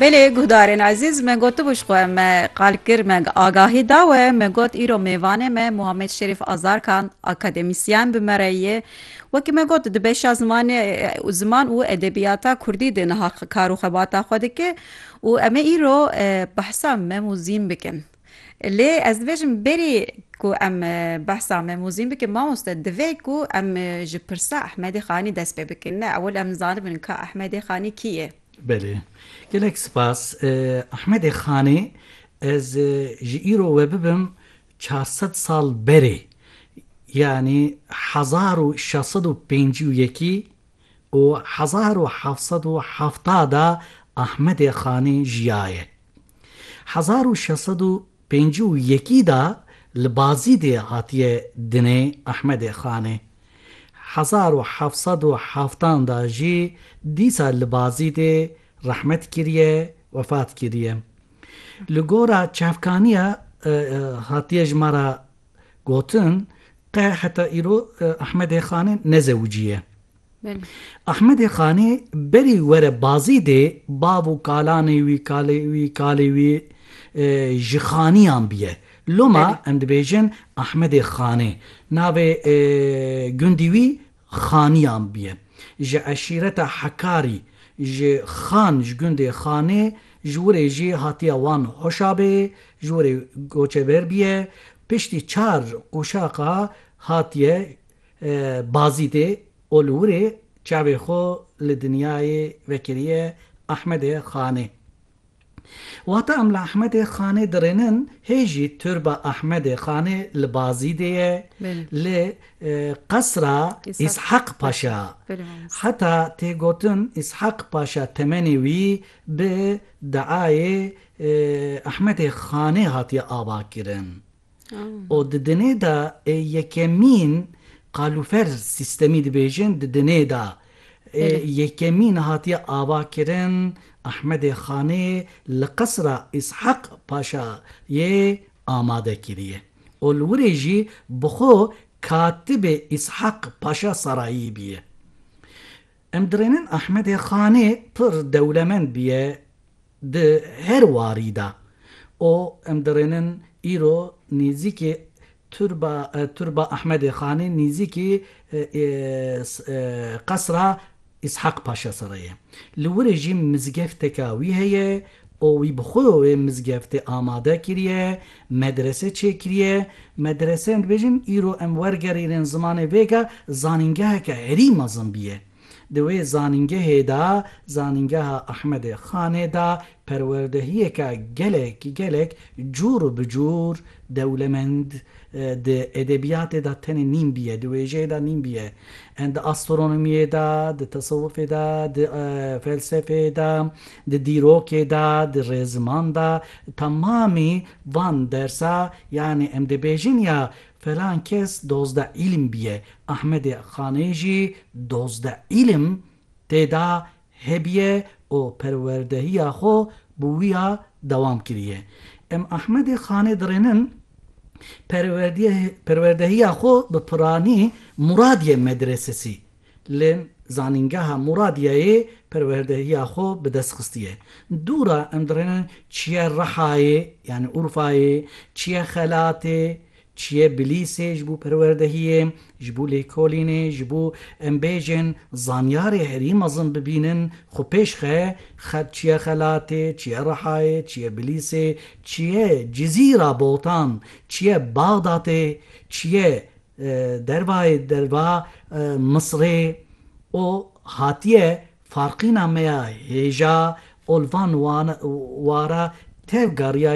Belê guhdarên ezîz me gotibû ji xwe me qal kir me agahî da we me got îro mêvanê me Muhammed Şerîf Azarkan akademîsyen bi me re ye wekî me got di beşa zimanê û ziman û edebiyata kurdî de niha kar û xebata xwe dike û em ê îro behsa Mem û Zîn bikin. Lê ez dibêjim berî ku em behsa Memûzîn bikin mamoste divê ku em ji pirsa Ehmedê Xanî dest pê bikin. Ne ewil em zanibin ka Ehmedê Xanî kî ye? Belê. Gelek sipas. Ehmedê Xanî ez ji îro we bibim çar sed sal berê yanî hezar û şeş sed û pêncî û yekî, û hezar û heft sed û heft de Ahmedê Xanî jiyaye. Hezar û şeş sed û pêncî û yekî de li Bazîdê hatiye dinê Ahmedê Xanê. Hezar û heft sed û heftan de jî dîsa li Bazîdê rehmet kiriye, wefat kiriye. Li gora çavkaniya hatiye ji me re Gotin, qe heta îro Ahmedê Xanê nezewiciye. Ahmedê Xanê berî were Bazîdê bav û kalanê wî, kalê wî, kalê wî ji xaniyan biye. Loma em dibêjin Ahmedê Xanê. Navê gundî wî Xaniyan bûye. Ji eşîreta Hekarî, ji Xan ji gundê Xanê, ji Wurê jî hatiye wan Hoşabeyê, ji Wurê koçeber bûye. Piştî çar qoşaqa hatiye Bazîdê û li Wurê çavê xwe li dinyayê vekiriye Ehmedê Xanê. Wata em li Ehmedê Xanê dirênin, hê jî Turba Ehmedê Xanê li Bazîdê ye, li qesra Îshak Paşa. Heta tê gotin Îshak Paşa temenê wî bi deayê Ehmedê Xanê hatiye avakirin. û di dinê de ê yekemîn qalûfer sîstemî dibêjin di dinê de ê yekemîn hatiye avakirin Ehmedê Xanê li qesra Îsheq Paşa yê amade kiriye û li wirê jî bi xwe katibê Îsheq Paşa Serayî bîye. Em dirênin Ahmedê Xanê pir dewlemend bûye di her warî de û em dirênin îro nêzîkî turba turba Ahmedê Xanê nêzîkî qesra Îshak Paşa Sere ye. Li Wurê jî mizgefteke wî heye û wî bi xwe wê mizgeftê amade kiriye, Medrese çêkiriye, medrese em dibêjin îro em wergerînin zimanê vêga zanîngeheke herî mezin bîye. Di wê zanîngehê de, Zanîngeha Ahmedê Xanê de perwerdehiyeke gelek gelek cûr û bicûr dewlemend di edebiyatê de tenê nîn bîye, di wêjeyê de nîn bîye. Di astronomiyê de, di tesewufê de, di felsefeyê de, di dîrokê de, di rêziman de, Temamî van dersa yanî em dibêjin ya felan kes dozde îlim bîye, Ahmedê Xanê jî dozde îlim tê da hebîye û perwerdehîya xwe bi wî ya dewam kirîye. Em Ahmedê Xanê dirênin perwerdehîya xwe bi piranî Muradîye Medresesî Li Zanîngeha Mûradiyeyê perwerdehiya xwe bi dest xistiye. Dûra em dirênin çiye Rihayê yanî Urfayê, çiye Xelatê, çiye Bilîsê ji bo perwerdehiyê, ji bo lêkolînê, ji bo em bêjin zanyarê herî mezin bibînin xwe pêş xe, çiye Xelatê, çiye Rihayê, çiye Bilîsê, çiye Cizîra Botan, çiye Baxdatê, çiye Dervayê derva Misrê û hatiye farqîna me ya hêja û li van wara tev gariya